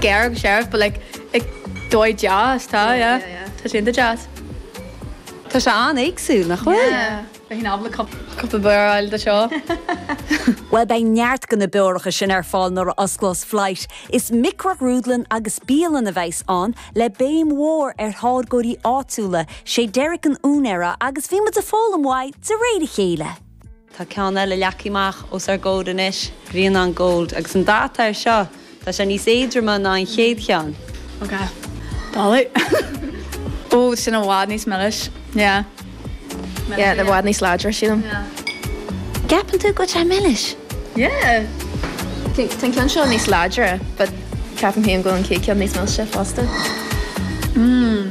Gearr agus searbh but like ag dóigh deas tá yeah yeah yeah tá sé iontach deas. Tá sé an-éagsúil nach bhfuil? Yeah. Beidh in am le cúpla beoir a fháil do seo. Bhuel beidh neart de na beoracha sin ar fáil nuair a osclós Flight. Is microghrúdlann agus bialann a bheas ann le béim mhór ar tháirgeoirí áitiúla, sé Derek an t-úinéara agus bhí mé ag foghlaim uaidh de réir a chéile. Tá ceann eile leagtha amach os ár gcomhair anois, Grianán Gold, agus an dath air seo, tá sé níos éadroma ná an chéad cheann. Ok. Dáileadh. Ó, sin i bhfad níos milis. Yeah. Yeah, i bhfad níos láidre, sílim. Yeah. Ceapann tú go bhfuil sé milis? Yeah. Tá an ceann seo níos láidre, but ceapaim féin go bhfuil an chéad ceann níos milse fosta. Mm.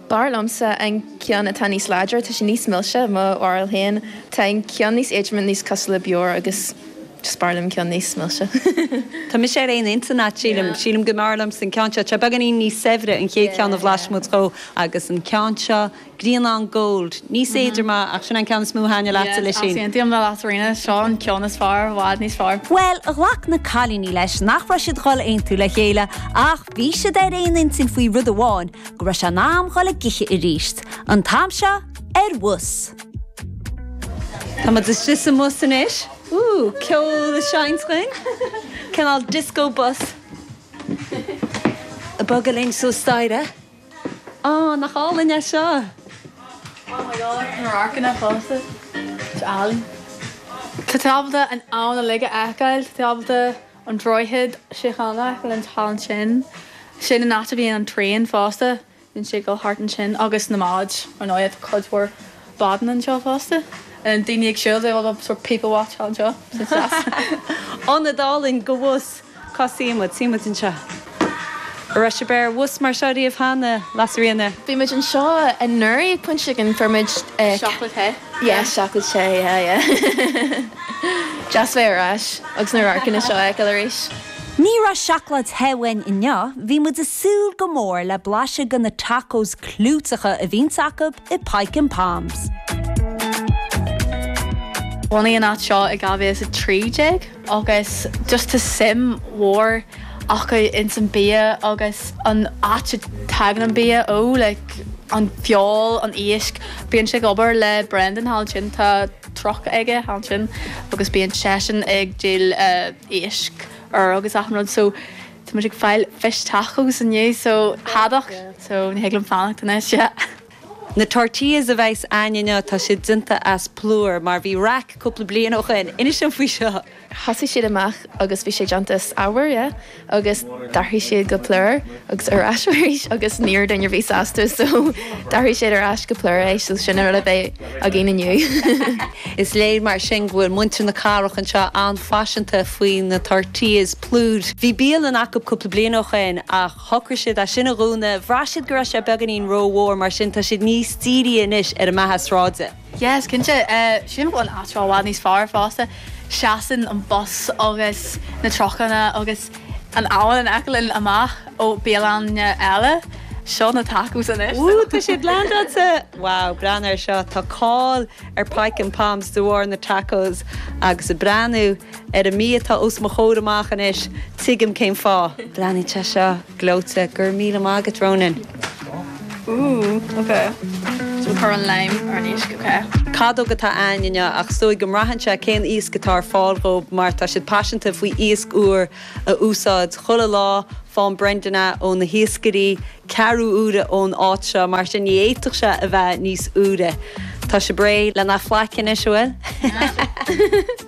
B'fhearr liomsa an ceann atá níos láidre, tá sé níos milse, mo bharúil féin. Tá an ceann níos éadroime, níos cosúil le beoir agus just b'fhearr liom ceann níos milse. Tá mise ar aon intinn leat, sílim. Sílim go mb'fhearr liomsa an ceann seo. Tá sé beagáinín níos saibhre, an chéad cheann a bhlais muid de, agus an ceann seo, Grianán Gold, níos éadroma ach sin é an ceann is mó a thaitneodh leatsa, Lisín. Yes, aontaím le Lasairfhíona, seo an ceann is fearr, i bhfad níos fearr. Bhuel, ghlac na cailíní leis nach raibh siad dhul aontú le chéile ach. Bhí siad ar aon intinn faoi rud amháin, go raibh sé in am dhul i gcrích arís. An t-am seo ar bhus. Tá muid istigh sa mbus anois. Ooh, ceol a sheinnt dhuinn. Cineál disco bus. Ag bogadh linn suas staighre. Ah, nach álainn é seo! Oh my God, tá radharcanna fosta go hálainn. Tá tú ábalta an abhainn uilig a fheiceáil. Tá tábhairne. an Droichead Síochána linn thall ansin. Sin an áit a bhíonn an traein fosta, bíonn sé ag dul thart ansin agus na báid ar ndóigh, tá cuid mhór bádaí anseo fosta. Daoine ag siúl, they all love sort of people watch thall anseo. Ionad álainn, cá bhfios cá suífidh muid, suífidh muid anseo. An raibh sibh ar bhus mar seo riamh cheana, Lasairfhíona? Bhí muid anseo anuraidh ag Pointe Chicken, fuair muid chocolate te, yeah, chocolate te, yeah, yeah. Deas bheith ar ais agus na radharcanna seo a fheiceáil arís. Ní raibh seacláid the uainn inniu, bhí muid ag súil go mór le blaiseadh de na tacos clúiteacha a bhíonns acu i Pyke 'N' Pommes. Bhunaigh an áit seo i 2013. agus just tá suim mhór acu ins an bia agus an áit a dtagann an bia ó, like an feoil, an iasc. Bíonn sé ag obair le Brendan thall ansin, tá truck aige thall ansin agus bíonn seisean ag díol éisc úr agus achan rud, so tá muid ag fáil fish tacos inniu, so haddock, so ní thig liom fanacht anois, yeah. Na tortillas a bheas a'ainn inniu tá siad déanta as plúr mar bhí raic cúpla bliain ó shoin. Inis dom faoi seo! Thosaigh siad amach agus bhí sé déanta as arbhar, yeah, agus d'athraigh siad go plúr agus ar ais arís agus ní raibh daoine sásta so d'athraigh siad ar ais go plúr é so sin an rud a bheidh againn inniu. Is léir mar sin go bhfuil muintir na cathrach anseo an-phaiseanta faoi na tortillas plúr. Bhí bialann acu cúpla bliain ó shoin ach. shocraigh siad é sin a dhúnadh. Bhraith siad go raibh sé beagáinín ró-mhór, mar sin tá siad níos dírithe anois ar a mbeatha sráide. Yes, cinnte. Sin an t-atmaisféar i bhfad níos fearr fosta. Seasann an bus agus na trucanna agus an abhainn in aice linn amach ó bialanna eile. Seo na tacos anois. Wú, tá siad lán anse! Wow, breathnaigh ar seo. Tá cáil ar Pyke 'n' Pommes de bharr na tacos agus ag breathnú. Ar an mias atá os mo chomhair amach anois, tuigim cén fáth. Breathnaíonn sé seo gleoite. Go raibh míle maith agat, Ronan. Ooh, ok. So cuir an lime ar an iasc, ok. Cadóg atá a'ainn inniu ach is dóigh go mbraitheann sé cén iasc atá ar fáil dhóibh mar tá siad paiseanta faoi iasc úr a úsáid chuile lá, faigheann Brendan é ó na hiascairí, ceathrú uaire ón áit seo, mar sin ní fhéadfadh sé a bheith níos úire. Tá sé réidh lena bhlaiseadh anois, an bhfuil?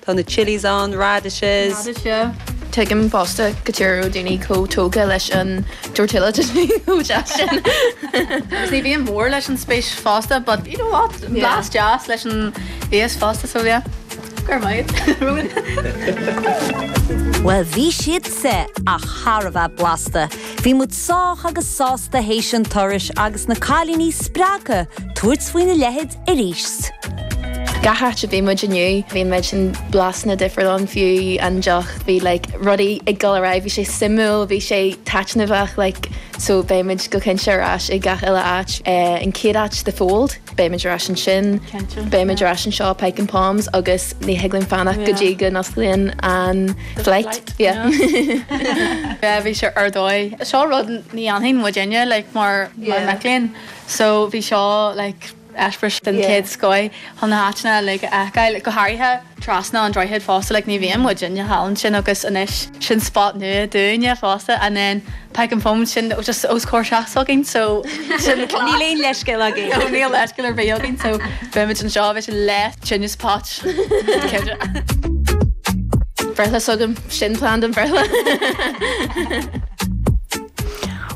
Tá na chillies ann, radishes. Radishes. Tuigim fosta cad chuige a raibh daoine chomh tógtha leis an tortilla chip's bhí chomh deas sin. Agus ní bhíonn mór leis an spéis fosta but you know what? Blas deas leis an bhfíos fosta so yeah. Go raibh maith agat Ronan. Bhuel bhí siad seo thar a bheith blasta. Bhí muid sách agus sásta théis an turais agus na cailíní spreagtha tabhairt faoina leithid, arís. Gach áit a bhí muid inniu bhí an méid sin blasanna difriúla fiú an deoch bhí like rudaí ag dul ar aghaidh bhí sé suimiúil bhí sé taitneamhach like so beidh muid go cinnte ar ais ag gach uile áit eh an chéad áit The Fold beidh muid ar ais ansin Cinnte, beidh muid ar ais anseo Pyke 'n' Pommes agus ní thig liom fanacht go dtí go n-osclaíonn an flight yeah bhí sé ar dóigh. Seo rud ní dhéanfadh muidinne like mar mar mic léinn. So bhí seo like eispéireas den chéad scoith chun na háiteanna like a fheiceáil, go háirithe trasna an droichid fosta, like ní bhíonn muidinne thall ansin agus anois sin spot nua dúinne fosta and then Pyke 'n' Pommes sin just os comhair seachas againn so sin an cleas. Níl aon leithscéal againn. No níl leithscéal ar bith againn so beimid anseo bheadh sé less genius pot Bhreithlá s'agam, sin plean don bhreithlá.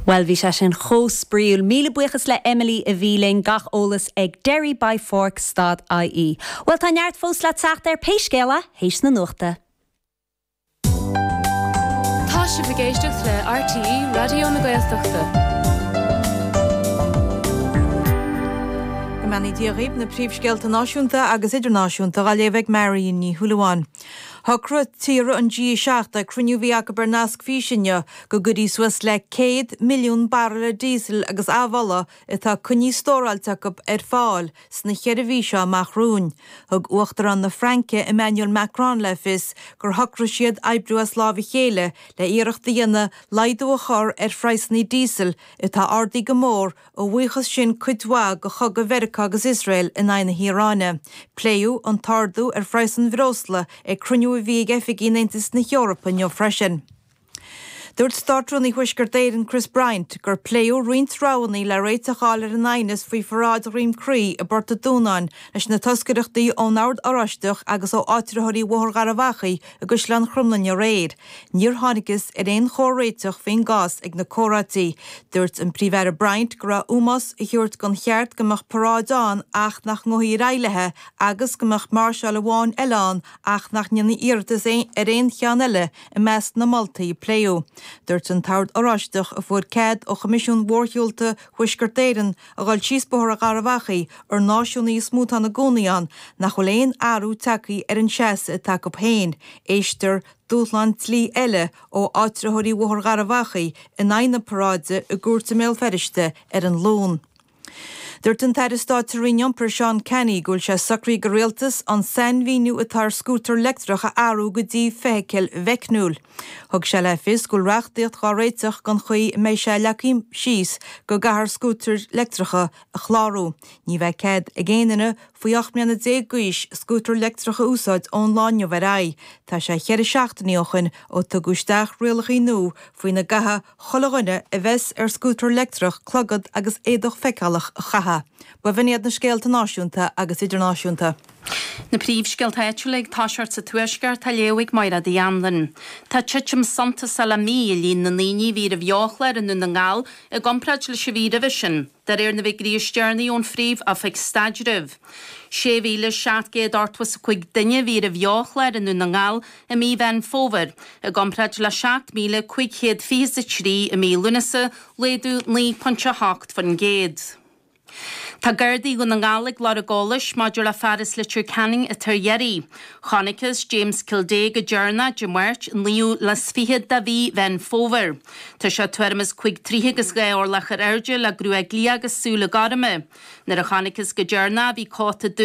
Bhuel, bhí sé sin chomh spraíúil. Míle buíochas le Emily a bhí linn. Gach eolas ag Derry by Fork, stad ie. Bhuel, tá neart fós le teacht ar pé scéal thar éis na nuachta. Tá sibh ag éisteacht le RTÉ Raidió na Gaeltachta. Beimid ag iarraidh na príomhscéalta náisiúnta agus idirnáisiúnta a léamh ag Marion Ní Shúilleabháin. Shocraigh tíortha an G7 ag cruinniú a bhí acu ar nasc físe inniu go gcuirfidh suas le 100 milliún baraille díosail agus amhola atá coinnithe stóráilte acu ar fáil sna cheithre mhí seo amach romhainn. Thug Uachtarán na Fraince Emmanuel Macron le fios gur shocraigh siad oibriú as lámh a chéile le iarracht a dhéanamh laghdú a chur ar phraghsanna díosail atá ardaithe go mór a bhuíochas sin cuid mhaith go chogadh Mheiriceá agus Iosrael in aghaidh na hIaráine. Pléadh an t-ardú ar phraghas an bhreosla ag cruinniú a bhí ag oifigigh an Aontais na hEorpa inniu freisin. Dúirt Státrúnaí Thuaisceart Éireann Chris Bryant gur pléadh roinnt roghanna le réiteach a fháil ar an aighneas faoi pharáid Dhroim Crí i bPort an Dúnáin leis na toscaireachtaí ón Ord Oráisteach agus ó áitritheoirí Bhóthar Gharbh Achaidh i gCaisleán Chromghlinne aréir. Níor thángthas ar aon chomhréiteach faoin gcás ag na comhráití. Dúirt an Príomh-Aire Bryant go raibh ómós a thabhairt don cheart go mbeadh paráid ann ach nach ngabhfaí ag réabhlóidí agus go mbeadh máirseáil amháin eile ann ach nach ndéanfaí iarratas ar aon cheann eile I measc na moltaí a pléadh, dúirt an tOrd Oráisteach, a fuair cead ó Choimisiún Mhórshiúlta Thuaisceart Éireann a dhul síos Bóthar Gharbh Achaidh, ar náisiúnaithe is mó atá ina gcónaí ann, nach bhfuil aon athrú tagtha ar an seasamh atá acu féin, éistfear dúshlán dlí eile ó áitritheoirí Bhóthar Gharbh Achaidh in aghaidh na paráide i gcúirt i mBéal Feirste ar an Luan. Dúirt an tAire Stáit sa Roinn Iompair Seán Canney go bhfuil sé socraithe ag an Rialtas an sainmhíniú atá ar scútar leictreach a athrú go dtí feithicil mheicniúil. Thug sé le fios go bhfuil reachtaíocht dhá réiteach don chaoi a mbeidh sé leagtha síos go gcaithfear scútair leictreacha a chlárú. Ní bheidh cead ag aon duine faoi 18 mbliana d'aois scútar leictreach a úsáid ón lá inniu ar aghaidh. Tá sé cheithre seachtainí ó shoin ó tugadh isteach rialacha nua faoina gcaithfidh Chuile dhuine a bheas ar scútar leictreach, clogad agus éadach feiceálach a chaitheamh. Ba in iad na scéalta náisiúnta agus idirnáisiúnta. Na príomhscéalta áitiúla ag toiseacht sa Tuaisceart á léamh ag Máire Uí Anluain. Tá titim suntasach le mí i líon na ndaoine a bhí ar an mbeochlár i nDún na nGall i gcomparáid leis an mhí roimhe sin. De réir na bhfigirí is deireanaí ón Phríomh Oifig Staidrimh, 6,700 ochtmhas 5 duine a bhí ar an mbeochlár i nDún na nGall i mí Mheán Fómhair, i gcomparáid le 7,500 fiche is a trí i mí Lúnasa, laghdú 9.8%. Tá Gardaí Dhún na nGall ag lorg eolais maidir le fear as Leitir Ceanainn atá ar iarraidh. Chonacthas James Kildea go deireanach Dé Máirt, 29ú de mhí Mheán Fómhair. Tá sé tuairim is cúig troithe agus dhá orlach ar airde le gruaig liath agus súile gorma. Nuair a chonaiceas go deireanach é bhí cóta dubh,